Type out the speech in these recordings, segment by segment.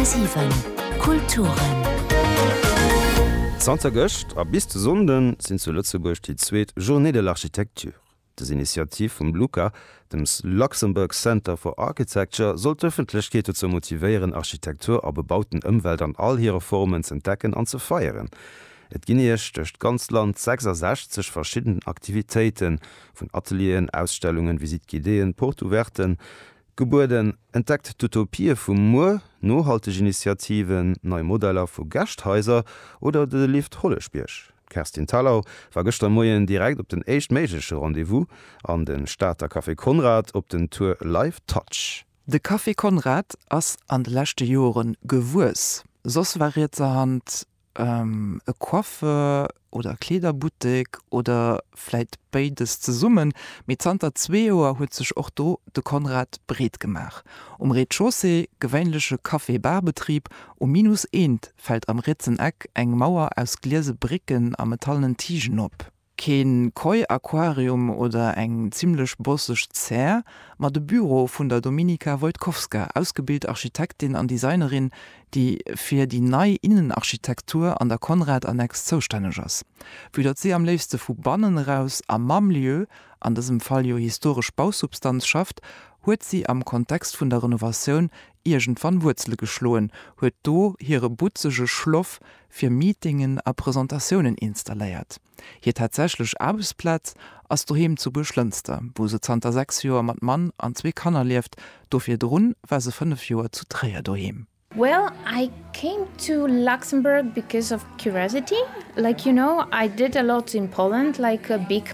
10,7 Kulturen. Zanter gëscht a bis de Sonnden sinn zu Lëtzebuerg déi zweet Journées de l'Architecture. Des Initiativ vum LUCA, dem Luxembourg Center for Architecture, soll d'Ëffentlechkeet dozou motivéieren, Architektur a bebauten Ëmwelt an all hire Formen z'entdecken an ze feieren. Et ginn Iech duerch d'ganzt Land 66 verschidden Aktivitéiten, vun Atelieren, Ausstellungen, Visite-guidéeën, Porte-ouverten, Gebueden, Entdeckt d'Utopië vu muer, nohalteg Initiativen, nei Modeller vu Gäscht-Haiser oder de Lift Holleschbierg. D'Kerstin Thalau war gëschter Moien direkt op den éischt méigleche Rendez-vous an de Stater Café Konrad op den Tour Live Touch. De Café Konrad ass an de leschte Joren gewuess, soss war rietserhand E Coiffeur oder e Kleederbuttek oder vläit béides zesummen. Mee zanter zwee Joer huet sech och do de Konrad breet gemaach. Um Rez-de-chaussée, gewéinleche Café-Bar-Betrib, um Minus Eent fält am rietsen Eck eng Mauer aus gliese Bricken a metallenen Tigen op. Keen Koi Aquarium oder eng zimlech bosseg Zär, ma de Büro vun der Dominika Wojtkowska, ausgebilt Architektin an Designerin, déi fir déi nei Innenarchitektur an der Conrad-Annex zoustänneg ass. Vue datt si am léifste vu bannen eraus a mam Lieu, an dësem Fall jo historesch Bausubstanz, schafft, huet si am Kontext vun der Renovatioun iergendwann Wuerzele geschloen, huet do hire butzege Schloff fir Meetingen a Presentatiounen installéiert. Hir tatsächlech Aarbechtsplaz ass doheem zu Buerglënster, wou se zanter 6 Joer mat Mann an zwee Kanner lieft. Do virdrun war se 5 Joer zu Tréier doheem. Well I came to Luxembourg because of curiosity, like you know I did a lot in Poland like a big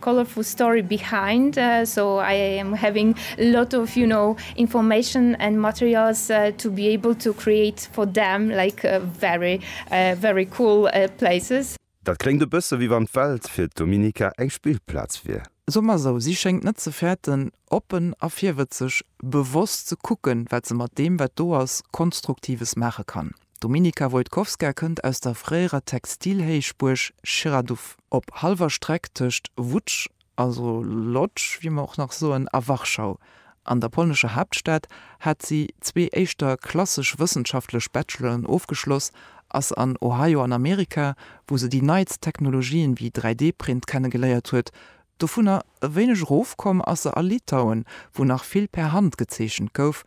Colorful story behind, so I am having a lot of you know information and materials to be able to create for them like very very cool places. Dat kléngt e bësse wéi wann d'Welt fir d'Dominica eng Spillplaz wier. So mer esou, si schéngt net ze fäerten, oppen a virwëtzeg, bewosst ze kucken, wat se mat deem, wat do ass, Konstruktives maache kann. D'Dominika Wojtkowska kënnt aus der fréierer Textilhéichbuerg Chiraduff. Op hallwer Streck tëscht Łódź, also Lodz, wéi mer och nach soen, a Warschau, an der polnescher Haaptstad, hat si zwee éischter klassesch wëssenschaftlech Bacheloren ofgeschloss, ass an Ohio an Amerika, wou se déi neitst Technologien wéi 3D-Print kennegeléiert huet, dovunner e wéineg erofkomm ass se a Litauen, wou nach vill per Hand gezeechent gouf,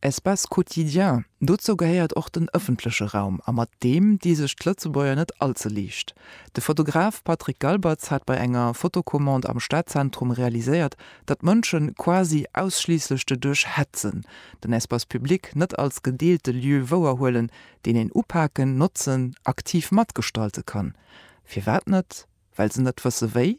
Espace quotidien, dozou gehéiert och den ëffentleche Raum a mat deem di sech d'Lëtzebuerger net all ze liicht. De Fotograf Patrick Galbertz hat bei enger Fotocommande am Stadzentrum realiséiert, datt d'Mënsche quasi ausschliisslech de duerch hetzen, den Espace public net als gedeelte Lieu wouerhuelen, deen een upaken, notzen, aktiv matgestalte kann. Firwat net? Well se net wësse wéi?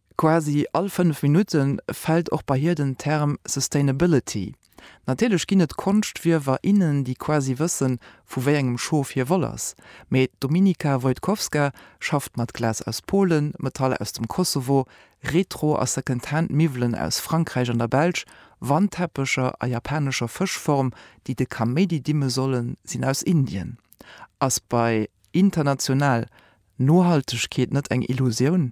Quasi all fënnef Minutte fält och bei hir den Term Sustainability. Natierlech ginn et Konschtwierwer, innen, déi quasi wëssen, vu wéi engem Schof hir Woll ass. Mee d'Dominika Wojtkowska schafft mat Glas aus Polen, Metall aus dem Kosovo, Retro a Secondhand Miwwelen aus Frankräich an der Belsch, Wandteppecher a japanescher Fëschform, déi de Kaméidi dimme sollen, sinn aus Indien. Ass bei international Nohaltegkeet net eng Illusioun?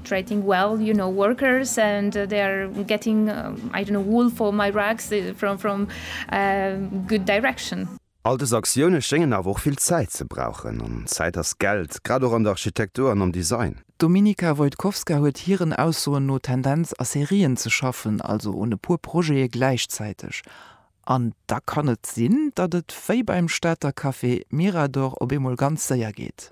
Treating well, you know, workers and they are getting, I don't know, wool for my rugs from a good direction. All dës Aktioune schéngen awer och vill Zäit ze brauchen, an Zäit ass Geld, grad och an der Architektur an am Design. D'Dominika Wojtkowska huet hiren Aussoen no d'Tendenz a Serien ze schaffen, also un e puer Projete gläichzäiteg. An da kann et sinn, datt et wéi beim Stater Café Mirador op eemol ganz séier geet.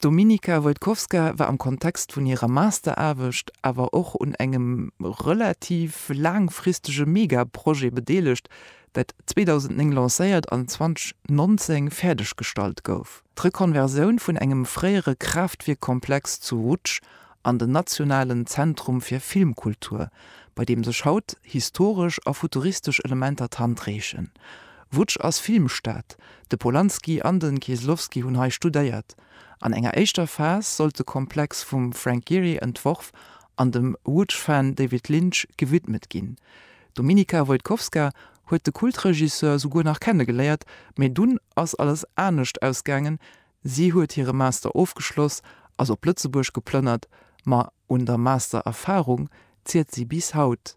D'Dominika Wojtkowska war am Kontext vun hirer Masteraarbecht awer och un engem relativ laangfristege Mega-Projet bedeelegt, dat 2009 lancéiert an 2019 fäerdeggestallt gouf, d'Rekonversioun vun engem fréiere Kraaftwierkkomplex zu Łódź an den nationalen Zentrum fir Filmkultur, bei deem sech haut historesch a futuristesch Elementer d'Hand reechen. Łódź ass Filmstad, de Polanski an de Kieslowski hunn hei studéiert. An enger éischter Phas sollt de Komplex vum Frank Gehry entworf an dem Łódź-Fan David Lynch gewidmet ginn. D'Dominika Wojtkowska huet de Kultregisseur souguer nach kenne geléiert, mee dunn ass alles anescht ausgaangen, si huet hire Master ofgeschloss, ass op Lëtzebuerg geplënnert, ma un der Master-Erfarung ziert si bis haut.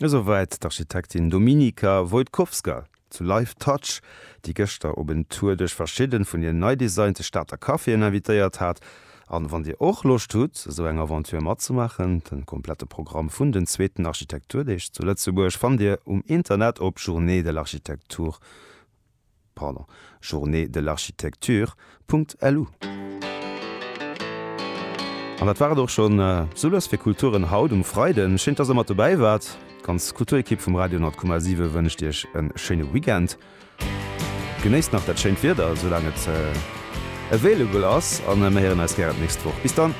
Esouwäit d'Architektin Dominika Wojtkowska zu Live Touch, déi gëschter op en Tour duerch verschidde vun den nei designte Stater Caféen invitéiert hat. An wann dir och Loscht hutt, esou eng Aventure matzemaachen, den komplette Programm vun den zweeten Architekturdeeg zu Lëtzebuerg fannt dir um Internet op journeedelarchitecture. Pardon, Journée de l'Architecture. LU. An dat war et och schonn sou lues fir Kulturen haut um Freiden. Schéin, dass der mat dobäi waart. D'ganz Kulturekipp vum Radio 10,7 wënscht iech e schéine Weekend. Genéisst nach dat schéint Wieder, soulaang et available ass, a mir héieren eis gären d'nächst Woch. Bis dann!